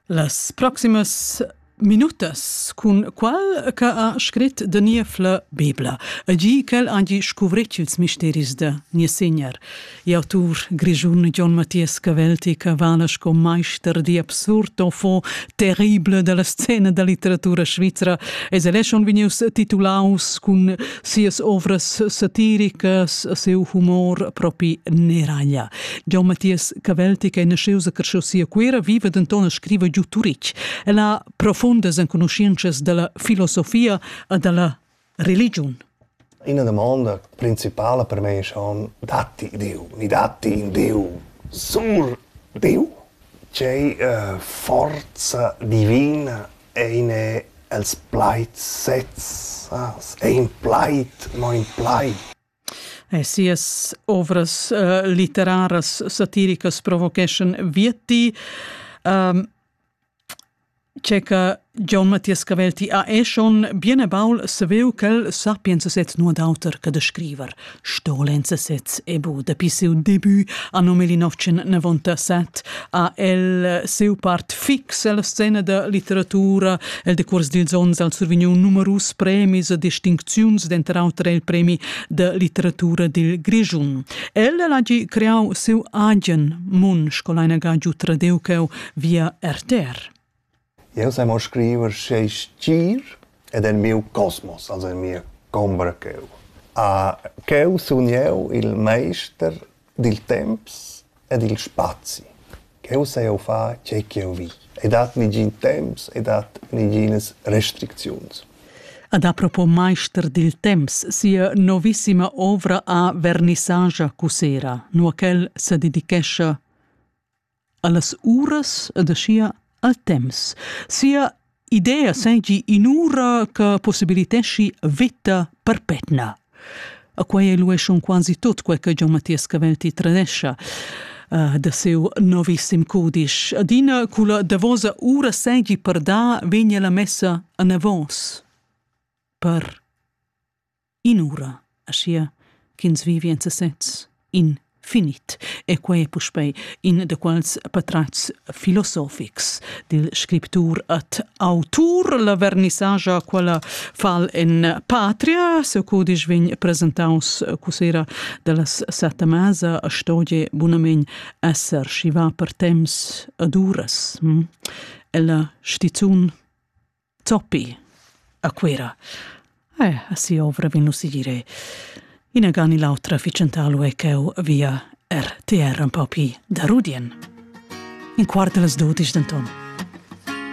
Las proximas minutas cun qual che ha scrit da Niefla Bebla e gi ch'el hagi scuvretg ils misteris da Niessegner. I'autur grischun John Mathias Cavelti che vala sco meister di absurd enfin terrible dalla scena da litteratura svizra es el schon vegnius titulaus cun sias ovras satiricas, siu humor propi neraglia. Gian Mathias Cavelti, che è nasciuto a Crciosi a Cuira, vive denton e scrive giu Turitg. El ha profundas enconoscenzas dalla filosofia e dalla religion. Una domanda principale per me è schon, datti Dio? Mi datti in Dio? Sur Dio? C'è uh, forza divina in els plaids sezs? È in plaid, no in plaid? E sias ovras uh, litteraras satiricas provocheschan via ti. Um, c'è che John Mathias Cavel ti ha eschon bien e baul saveu ch'el sapienza sez nu ad auter che da scriver. Stolenza sez e bu dapi siu debut a 1997 ha el siu part fix ella scena da litteratura, el decuors d'ils ons al survigniu numerus premis e distincziuns, denter auter il premi de litteratura dil Grischun. El ha gi creau siu agen mun, scolina ga giu tradeu cheu via RTR. Jeu sai mo scriver sch'ei stgir ed en miu cosmos, also en mia combra cheu. Ah, cheu sun jeu il meister dil temps e dil spazi. Cheu sai jeu far tgei ch'jeu vi. Ei dat negin temps, ei dat neginas restricziuns. Ad apropos meister dil temps, sia novissima ovra ha vernissagia cussera, nua ch'el sededichescha allas uras ed aschia al temps. Sia idea seigi in'ura che possibiliteschi vita perpetna. A quei elueschon quasi tot quel che Gian Mattias Cavelti tradescia uh, da seu novissim codisch. Adina culla davosa ura seigi per da vegna la messa a navos per in'ura, aschia ch'ins vivi en sesez in finit e quei è puspei in de quals patrats filosofics dil scriptur et autur la vernissagia quella fal en patria se codisch vegn presentaus cusera dallas setta masa stogie bunamein esser schiva per temps ad uras hm? ella stizun Zoppi a Cuera. Eh, a si ovra vin si dire. Inagan l'autra ficentalu è ch'eu via RTR un po' pi da Rudien. In quart de las dodisch denton.